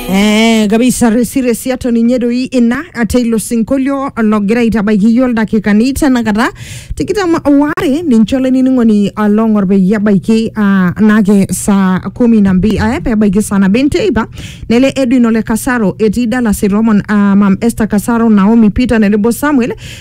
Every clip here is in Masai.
Eh, kabisa resi resi ato ninye doi ina ate ilo sinkolio logira aitabaiki iyiook ildakikani tenakata tikitam waare ninche olainining'oni along'or peyie ebaiki ah, naake saa kumi na mbi eh, pebaiki saa nabo enteipa nele Edwin ole Kasaro etii Dallas Itomon ah, mam Esther Kasaro Naomi Peter tenebo Samuel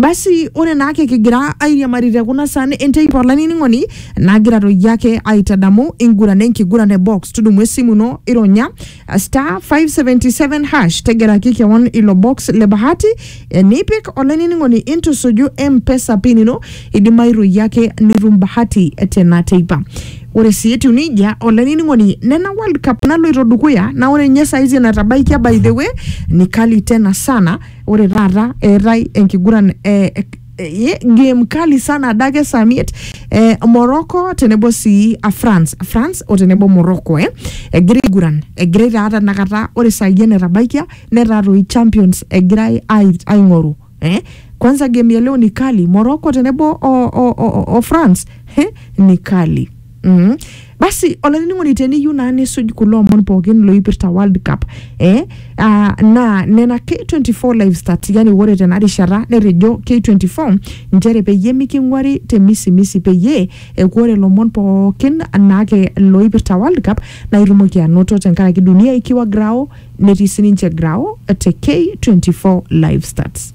Basi ore naake kigira airiamari te kuna san enteipa olainining'oni nagira toi ake aitadamu enkiguran enkiguran e box tudumu esimu ino ironya uh, star 577 hash tegelaki kewon ilo box le bahati eh, nipik olainining'oni intusuju mpesa pin ino idimayu toi ake nitum bahati tena teipa ore sii etiu nejia olainining'oni nena world cup naloito dukuya naa ore ninye saizi enatabaikia by the way ni kali tena sana Ore taata eetae enkiguran eh, eh, game kali sana adake saa miet eh, Morocco tenebo sii a France France o tenebo Morocco eh, egira aiguran egirai taa tenakata ore saai enetabaikia netaa toi champions egirai ai- aing'oru eh. Kwanza game ya leo ni kali Morocco tenebo o, o, o, o France eh, ni kali Mm. Basi olainining'oni teniyieu naa nisuj kulo omon pookin loipirta World Cup eh, ah, naa nena K24 live stats yani ore tena rishata netejo K24 nchere peyie miking'uari te misimisi peyie eku ore lomon pookin naake loipirta World Cup naa itumoki anoto tenkaraki dunia ikiwa grao netii sininche grao te K24 live stats.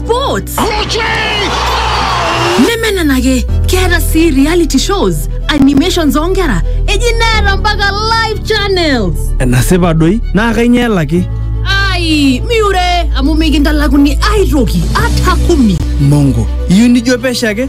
sports nemenenake keeta sii reality shows animations oonkera eji neeta mpaka live channels enasipa doi naa kainyoo elaki ai miure amu mikintalakuni aitoki ata kumi mongo iyieu nijo pesho ake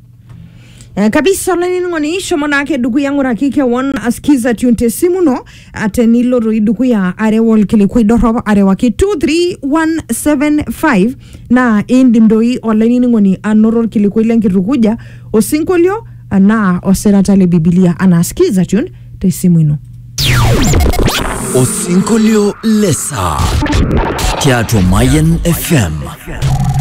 Eh, kabisa olainining'oni shomo naake dukuya ng'uraki kewon askiza tune te simu ino ah, tenilo doi dukuya areu olkilikuai dorrop arewaki 23175 naa indim doi olainining'oni anoto olkilikuai lenkitukuja osinkolio anaa osirata le bibilia anaa skiza tune te simu ino Osinkolio Lesa. Tiatua Mayan FM.